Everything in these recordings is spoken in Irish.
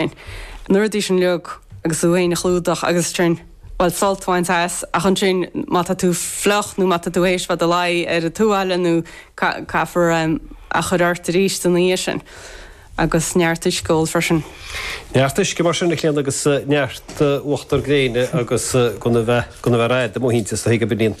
sin. Nuair a d'fhí sin liog agus tú féin a chlúdach agus ansin, bhuel sult a bhaint as ach ansin má tá tú fliuch nó má tá tú théis bheith i do luí ar an tuáille nó caithfear a chur ort arís ina dhiaidh sin agus neart uisce a ól freisin. Neart uisce mar sin a Chlíona agus neart uachtar gréine agus gan a bheith gan a bheith rófhada amuigh inti is dóigh go b'in í.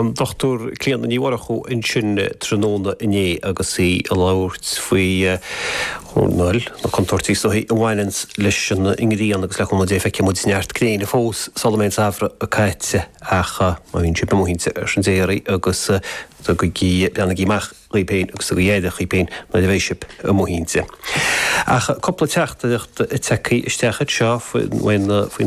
an Dr Clíona Ní Mhurchú ansin tráthnóna inné agus í ag labhairt faoi ar ndóigh na contúirtí is dóichí a bhaineann leis an ngrian agus le cúnamh Dé feicfidh muid neart gréine fós sula mbeidh an samhradh caite ach má bhíonn sibh amuigh inti ar son Dé oraibh agus tugaigí, breathnaígí amach. dhaoibh féin agus tugaigí aire dhaoibh féin nuair a bheidh sibh amuigh inti. Ach cúpla teachtaireacht tagtha isteach anseo faoi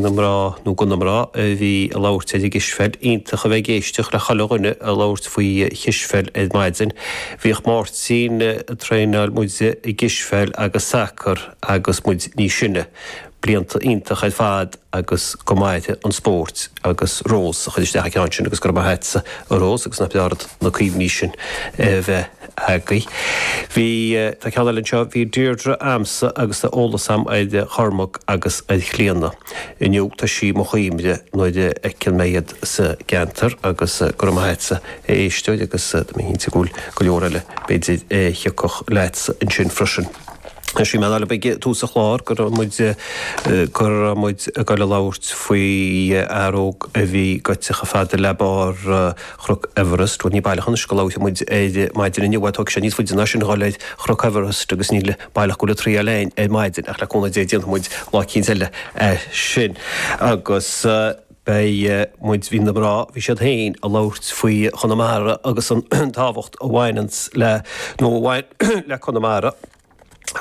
na mná, nó go na mná, a bhí ag labhairt ar an gcispheil. Iontach a bheith ag éisteacht le chuile dhuine ag labhairt faoi chispheil ar maidin. Bhíodh Máirtín ag traenáil muide i gcispheil agus sacar agus muid níos sine. blianta iontach ar fad agus go mairfidh an spóirt agus Rós a chuir isteach an ceann sin agus go raibh maith a'tsa a Rós agus nach breá an rud na cuimhní sin a bheith agaibh. Bhí tá ceann eile anseo bhí Deirdre a'msa agus tá eolas a'm ar Chormac agus ar Chlíodhna inniu tá sí i mo chuimhne nuair a fheiceann mé iad sa gceantar agus go raibh maith a'tsa a éisteoir agus tá mé cinnte go bhfuil go leor eile b'fhéidir a thiocfadh leatsa ansin freisin. Shíl mé ar ball ag tús an chláir go raibh muid go raibh muid ag gabháil a labhairt faoi fhear óg a bhí gaibhte chomh fada le barr Chnoc Everest. Bhuel ní baileach anois go labhróidh muid air maidin inniu, bhuel tógfaidh sé níos faide ná sin dhul ar Chnoc Everest agus ní baileach go bhfuil an triail againn ar maidin ach le cúnamh Dé déanfaidh muid lá eicínt eile é sin. Agus Beidh muid, bhí na mná, bhí siad féin a labhairt faoi Chonamara agus an tábhacht a bhaineanns le, nó a bhain le Conamara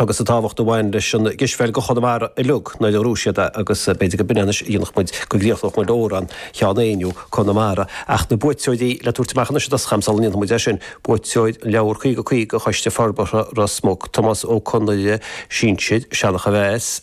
agus an tábhacht a bhain leis an gcispheil go Chonamara uilig mar a dúirt siad é agus b'fhéidir go b'in é anois a dhéanfadh muid go gcríochnódh muid amhrán Sheán Éinniú, Conamara. Ach na buaiteoirí le tabhairt amach anois i dtosach a'm sula ndéanfaidh muid é sin, buaiteoir an leabhar 50 50 Choiste Forbartha Ros Muc, Tomás Ó Conghaile, Sinsear, Seanachomheas.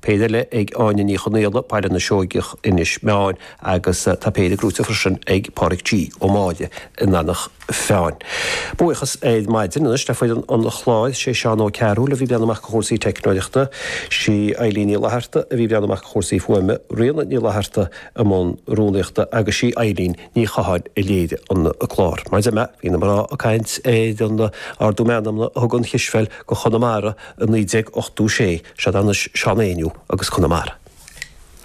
Péire eile ag Áine Ní Chonaola, Baile na Seoigeach, Inis Meáin agus tá péire gnóite freisin ag Pádraig G. Ó Máille in Eanach Mheáin. Buíochas ar maidin anois le foireann an chláir, sé Seán Ó Cearúil a bhí ag breathnú amach go chúrsaí teicneolaíochta, sí Eileen Ní Fhlatharta a bhí ag breathnú amach go chúrsaí fuaime, Ríona Ní Fhlatharta i mbun rúnaíochta agus sí Eileen Ní Chatháin a léirigh an clár. Maidir le Meath, bhí na mná ag caint ar an ardú meanmna a thug an chispheil go Conamara i 1986, sead anois Seán Ó hÉanaigh agus Conamara.